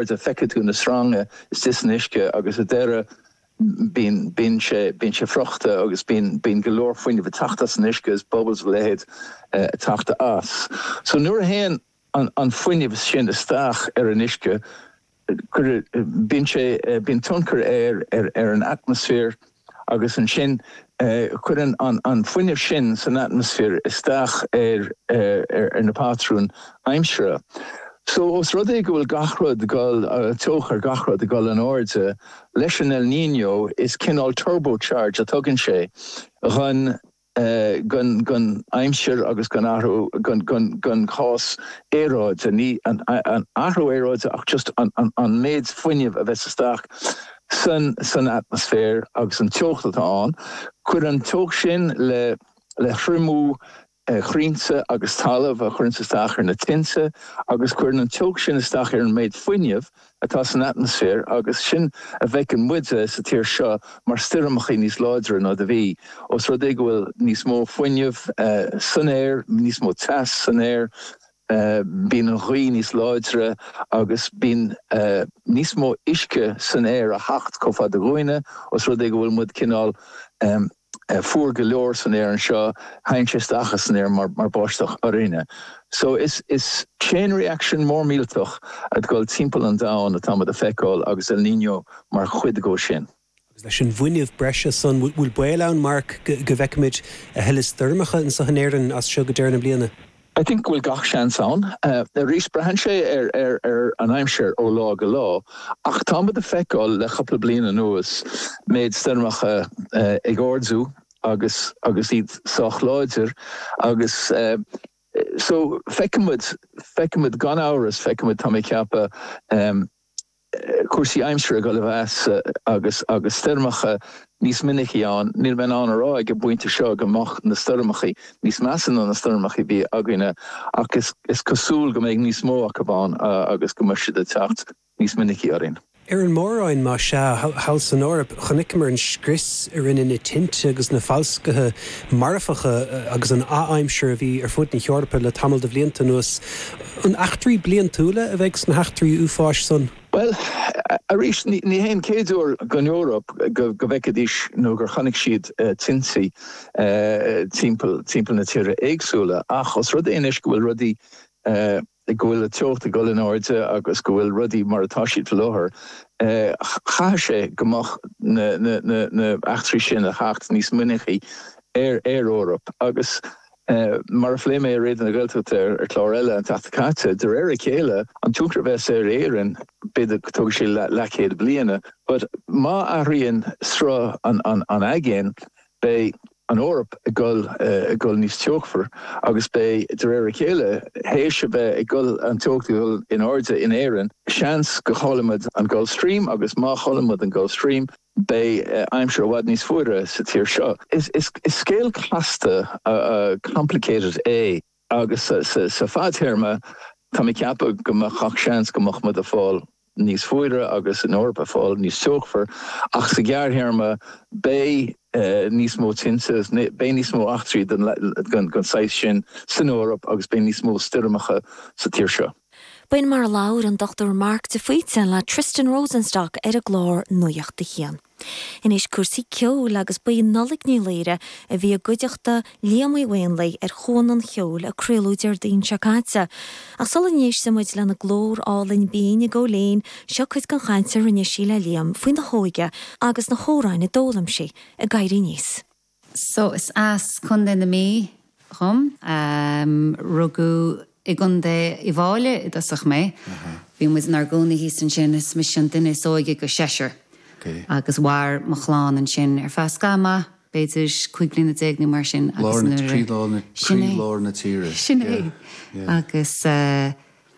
Nuair a feiceadh tú na sreanga istigh san uisce agus sa deireadh bíonn sé bíonn sé friochta agus bíonn bíonn go leor fuinnimh ag teacht as an uisce is bubbles a leithéid ag teacht as so nuair a théann an an fuinneamh sin isteach ar an uisce cuireadh bíonn sé bíonn tionchar air ar ar an atmaisféar agus ansin cuireann an fuinneamh sin san atmaisféar isteach ar na patrúin aimsire. So, os rud é go bhfuil gach rud ag dul, teocht gach rud ag dul in airde leis an El Niño, is cineál turbocharge a thugann sé dhon. den aimsir agus den athrú, den chás aeráide, ní an athrú aeráide ach just an méid fuinnimh a bheas istigh san atmaisféar agus an teocht atá ann, cuireann an teocht sin le triomú crainnte agus talamh a chuireanns isteach ar na tinte agus cuireann an teocht sin isteach ar an méid fuinnimh atá san atmaisféar agus sin a bhfeiceann muide sa tír seo mar stoirmeacha níos láidre ná a bhí, os rud é go bhfuil níos mó fuinnimh san aer, níos mó teas san aer, bíonn an ghaoth níos láidre agus bíonn níos mó uisce san aer ag teacht chomh fada dhúinne os rud é go bhfuil muid cineál. fuar go leor in Éirinn anseo, tagann sé amach as an aer mar bháisteach orainne. So is chain reaction mór millteach ag dul timpeall an domhain atá muid ag feiceáil agus El Niño mar chuid de sin. Agus leis an bhfuinneamh breise san, bhfuil baol ann, Mark, go bhfeicfimid a thuilleadh stoirmeacha anseo in Éirinn as seo go deireadh na bliana? I think go bhfuil gach seans ann. Arís, braitheann sé ar an aimsir ó lá go lá ach táimid ag feiceáil le cupla bliain anuas méid stoirmeacha ag ardú agus agus iad sách láidir agus so feicfimid, feicfimid gan amhras, feicfimid tá mé ag ceapadh. cúrsaí aimsire ag dul i measa agus agus stoirmeacha níos minicí ann. Níl mé in ann a rá ag an bpointe seo go mbeidh na stoirmeacha níos measa ná na stoirmeacha a bhí againne ach is cosúil go mbeidh níos mó acu ann agus go mbeidh siad ag teacht níos minicí orainn. Ar an Mór-Roinn más ea, thall san Eoraip, chonaiceamar an scrios a rinne na tinte agus na falscaithe marfacha agus an adhaimsir a bhí ar fud na hEorpa le tamall de bhlianta anuas. An eachtraí bliantúla a bheidh sna heachtraí uafáis san? Bhuel, arís, ní haon chéad uair don Eoraip go bhfeicfidís nó gur chonaic siad tinte timpeall na tíortha éagsúla, ach os rud é anois go bhfuil rudaí, go bhfuil an teocht ag dul in airde agus go bhfuil rudaí mar atá siad faoi láthair, caithfidh sé go mbeidh na heachtraí sin ag teacht níos minicí ar an Eoraip agus. Mar a phléigh mé i Raidió na Gaeltachta ar chlár eile an tseachtain seo caite, de réir a chéile an tionchar a bheas aige ar Éirinn, b'fhéidir go dtógfaidh sé leathchéad bliain, but má athraíonn sruth an aigéin beidh an Eoraip ag goil, ag goil níos teochair agus beidh, de réir a chéile, théis a bheith ag dul, an teocht ag dul in airde in Éirinn, seans go gcaillfidh muid an Gulf Stream agus má chailleann muid an Gulf Stream, beidh aimsir i bhfad níos fuaire sa tír seo. Is scéal casta, complicated, é agus sa fadtéarma tá mé ag ceapadh go bhfuil gach seans go mbeidh muid ag fáil níos fuaire agus an Eoraip ag fáil níos teochair ach sa ghearrthéarma beidh níos mó tinte, beidh níos mó eachtraí den saghas sin san Eoraip agus beidh níos mó stoirmeacha sa tír seo. B'in mar a labhair an Dr Mark de Faoite le Tristan Rosenstock ar an gclár Nuacht a hAon. Anois cúrsaí ceoil agus ba í Nollaig Ní Laoire a bhí i gcuideachta Liam Uí Mhaonlaí ar Chuan an Cheoil a craoladh Déardaoin seo caite ach sula n-éistfidh muid lena glór álainn binn ag gabháil fhoinn, seo cuid den chaint a rinne sí le Liam faoina hóige agus na hamhráin a d'fhoghlaim sí ag éirí aníos. So is as Co. na Mí dhom. Rugadh i gContae Uíbh Fhailí i dtosach mé. Bhí muid inár gcónaí thíos ansin, is mise an duine is óige de sheisear. Agus mhair mo chlann ansin ar feadh scaitheamh maith, b'fhéidir cúig bliana déag nó mar sin, agus nuair a. Lár na tíre, croílár na tíre. Sin é. Agus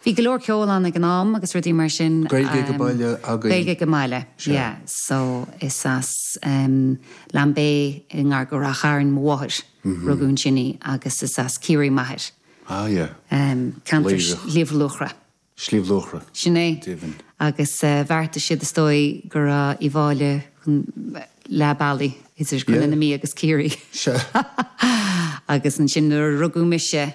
Bhí go leor ceoil ann ag an am agus rudaí mar sin. Gaeilge ag an mbaile agaibh. Gaeilge ag an mbaile, yeah. So, is as Lambay i ngar go Rath Chairn mo mháthair, rugadh ansin í, agus is as Ciarraí m'athair. Ah, yeah. Ceantar Shliabh Luachra. Sliabh Luachra. Sin é. Deimhin. Agus bheartaigh siad, is dóigh, go raibh Uíbh Fhailí leath bealaigh idir Chontae na Mí agus Ciarraí. Agus ansin nuair a rugadh mise,